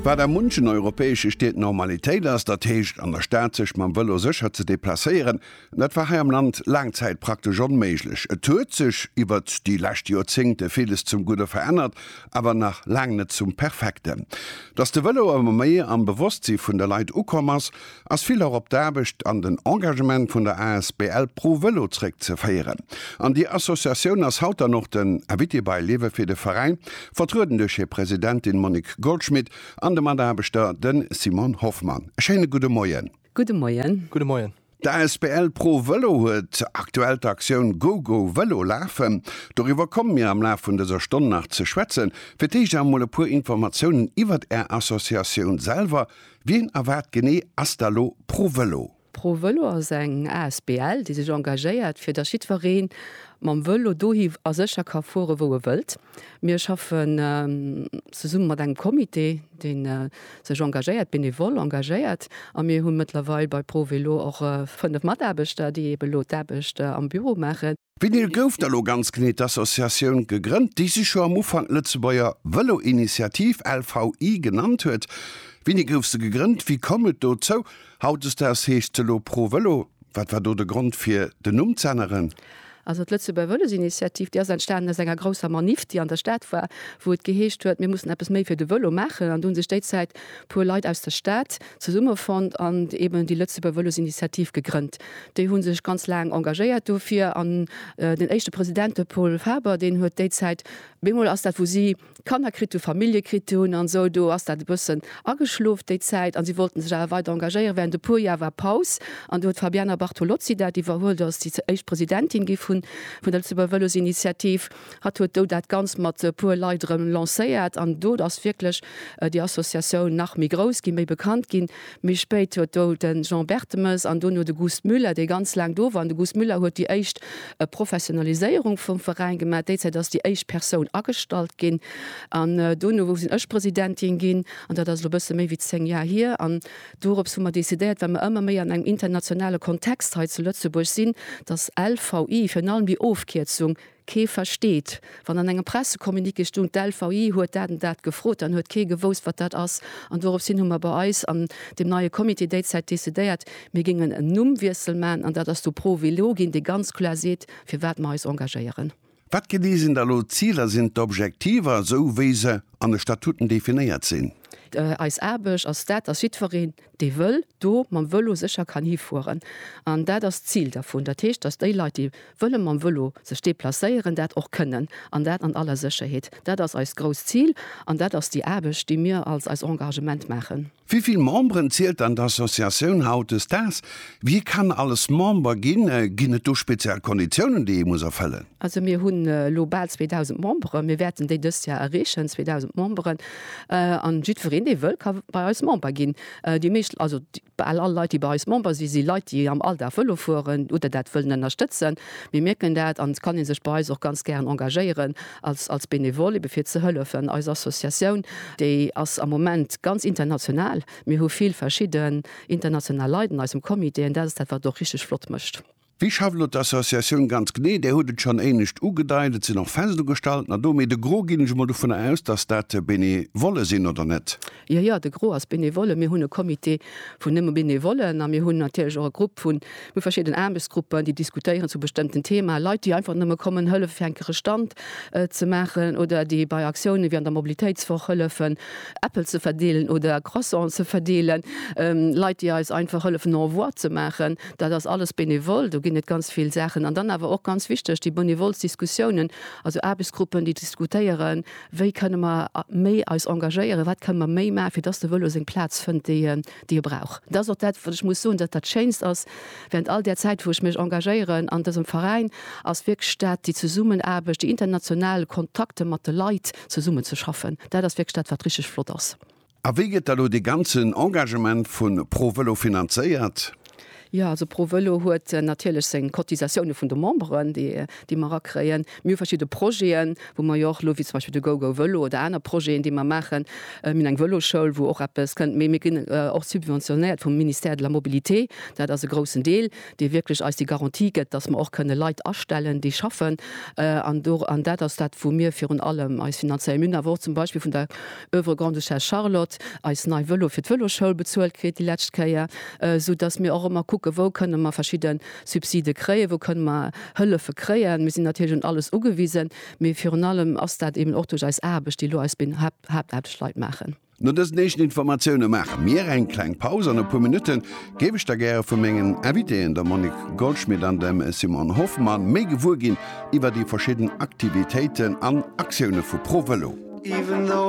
Wat a munchen europäesche Stied Normalitéit ass, dat heescht an der Stad sech mam Vëlo sécher ze deplacéieren, dat war hei am Land laang Zäit praktesch onméiglech. Et huet sech iwwert déi lescht Joerzéngte villes zum Gudde verännert, awer nach laang net zum Perfekten. Datt de Vëlo ëmmer méi am Bewosstsi vun de Leit ukomm ass, ass vill och op d'Aarbecht an den Engagement vun der asbl Pro Vëlo zréck ze féieren. An déi Associatioun ass haut dann och den Invité bei Liewe fir de Veräin, vertrueden duerch hir Presidentin Monique Goldschmit an de Mataarbechter den Simon Hoffmann. E schéine gudde Moien. Gudde Moien. Gudde Moien. D'asbl Pro Vëlo huet aktuell d'Aktioun GoGo Vëlo lafen. Doriwwer komme mir am Laf vun dëser Stonn nach ze schwätzen. Fir d'éischt awer mol e puer Informatiounen iwwert Är Associatioun selwer, Wien a wat genee ass da lo ProVelo? ProVelo ass eng asbl, déi sech engagéiert, fir datt jiddweree mam Velo dohi a sécher ka fuere wou e wëllt. Mir schaffen zesumme mat engem Comité, dee sech engagéiert, benevol engagéiert. A mir hu mëttlerweil bei ProVelo och 5 Mataarbechter, déi ebe lo d'Aarbecht am Büro maachen. Vinyl gouf da lo ganz genee d'Associatioun gegrënnt, déi sech jo am Ufank Lëtzebuerger Vëlo-Initiativ, LVI, genannt huet. Wéini gouf se gegrënnt? Wéi koum et dozou? Hautdesdaags heescht se elo Pro Vëlo. Wat war do de Grond fir den Numm z'änneren? Also d'Lëtzebuerger Vëlos-Initiativ, déi ass entstanen aus enger grousser Maniff, déi an der Stad war, wou et geheescht huet, mir mussen eppes méi fir de Vëlo maachen. An do hu sech déizäit e puer Leit aus der Stad zesummefonnt an eben déi Lëtzebuerg Vëlosinitiativ gegrënnt. Déi hu sech ganz laang engagéiert dofir an den éischte President, de Paul Faber, deen huet déi Zäit, bemol ass dat wou si Kanner kritt hu, Famillje kritt hunn an esou, do ass dat e bëssen ageschlof déi Zäit an si wollten sech awer weider engagéieren. Während e puer Jar war Paus an do huet d'Fabiana Bartolozzi dat iwwerhuelt, ass déi éischt Presidentin gi vun der Lëtzebuerg Vëlosinitiativ. Hatt huet do dat Ganzt mat e puer Leit erëm lancéiert an do ass wierklech déi Associatioun nach méi grouss ginn, méi bekannt ginn. Méi spéit huet do de Jean Bertemes an duerno de Gust Müller, dee ganz laang do war, an de Gust Müller huet déi éischt Professionaliséierung vum Veräin gemaach. Déizäit ass déi éischt Persoun agestallt ginn an duerno sinn ech Presidentin ginn an dat ass elo e bësse méi wéi zéng Jar hier. An dorops hu mer decidéiert, well mer ëmmer méi an engem internationale Kontext hei zu Lëtzebuerg sinn, datt LVI, virun allem déi Ofkierzung, Kee versteet, wann an engem Pressecommuniqué stoung, d'LVI huet dat an dat gefrot, dann huet kee gewousst, wat dat ass. An dorops hin hu mer bei eis an deem neie Comité déizäit decidéiert, mir géingen en Nummwiessel maachen, an dat ass du Pro Vélo ginn, dee ganz kloer seet, fir wat mer eis engagéieren. Wat genee sinn da elo d'Ziler, sinn d'Objektiver, esou wéi se an de Statuten definéiert sinn? Eis Aarbecht ass dat, dass jiddwereen, dee wëll do mam Vëlo sécher kann hifueren an dat ass d'Zil dervun. Dat heescht, dass déi Leit, déi wëlle mam Vëlo sech deplacéieren, dat och kënnen an dat an aller Sécherheet. Dat ass eist grousst Zil an dat ass déi Aarbecht, déi mir als eis Engagement maachen. Wéi vill Memberen zielt dann d'Associatioun hautdesdaags? Wie kann alles Member ginn? Ginn et do speziell Konditiounen, déi ee muss erfëllen? Also mir hunn elo bal 2.000 Memberen, mir wäerten déi dëst Joer erreechen, 2.000 Memberen, an jiddwereen dee wëll ka bei eis Member ginn. Déi meescht, also bal all Leit déi bei eis Member si si Leit déi am Alldag Vëlo fueren oder dat wëllen ënnerstëtzen. Mir mierken dat an et kann ee sech bei eis och ganz gären engagéieren als als Benevole ebe fir ze hëllefen. Eis Associatioun déi ass am Moment ganz international, mir hu vill verschidden international Leit an eisem Comité an dat ass dat wat och richteg flott mécht. Wéi schafft elo d'Associatioun ganz genee? Där hutt et schonn éinescht ugedeit. Et sinn och fest ugestalten ado. Mee de Gros, ginn ech emol dovunner aus, dass dat Benevolle sinn, oder net? Jo, jo, de Gros ass Benevolle. Mir hunn e Comité vun nëmme Benevollen a mir hunn natierlech och e Grupp vun, mir hu verschidden Aarbechtsgruppen, déi diskutéieren zu bestëmmten Themaen. Leit, déi einfach nëmme kommen hëllefe fir enker e Stand ze maachen oder déi bei Aktiounen, wéi an der Mobilitéitswoch, hëllefen Äppel ze verdeelen oder Croissanten ze verdeelen. Leit, déi eis einfach hëllefen au revoir ze maachen. Dat ass alles benevol, do ginn et ganz vill Saachen. An dann awer och ganz wichteg, déi benevols Diskussiounen, also Aarbechtsgruppen, déi diskutéieren, wéi kënne mer méi eis engagéieren, wat kënne mer méi maachen, fir dass de Vëlo seng Plaz fënnt, déi e brauch. Dat ass och dat, wat ech muss soen, dat dat Schéinst ass während all där Zäit, wou ech mech engagéieren an dësem Veräin, ass wierklech dat déi Zesummenaarbecht, déi international Kontakte mat de Leit, zesummenzeschaffen. Dat ass wierklech dat, wat richtig flott ass. A wéi gëtt da lo dee ganzen Engagement vu Pro Vëlo finanzéiert? Jo, also Pro Vëlo huet natierlech seng Cotisatioune vun de Memberen, déi déi mer erakréien. Mir hu verschidde Projeten, wou mer jo och elo, wéi zum Beispill de GoGo Vëlo oder aner Projeten, déi mer maachen. Mir hunn eng Vëloschoul, wou och eppes kënnt. Mee mir ginn och subventionéiert vum Ministère de la Mobilité. Dat ass e groussen Deel, dee wierklech eis déi Garantie gëtt, dass mer och kënne Leit astellen, déi schaffen. An do, an dat ass dat, wou mir virun allem eis finanzéieren. Mir hunn awer och zum Beispill vun der Oeuvre Grande-Duchesse Charlotte, eis nei Vëlo fir d'Vëloschoul bezuelt kritt déi lescht Kéier, sou datt mir och ëmmer kucke wou kënne mer verschidde Subside kréien, wou kënne mer Hëllefe kréien. Mir sinn natierlech un alles ugewisen, mee virun allem ass dat eben och duerch eis Aarbecht, déi elo eis béin Haaptaarbechtsleit maachen. No dësen éischten Informatioune maache mir eng kleng Paus. An e puer Minutte géif ech da gäre vu mengen Invitéen, der Monique Goldschmit an dem Simon Hoffmann, méi gewuer ginn iwwer déi verschidden Aktivitéiten an Aktioune vu ProVelo.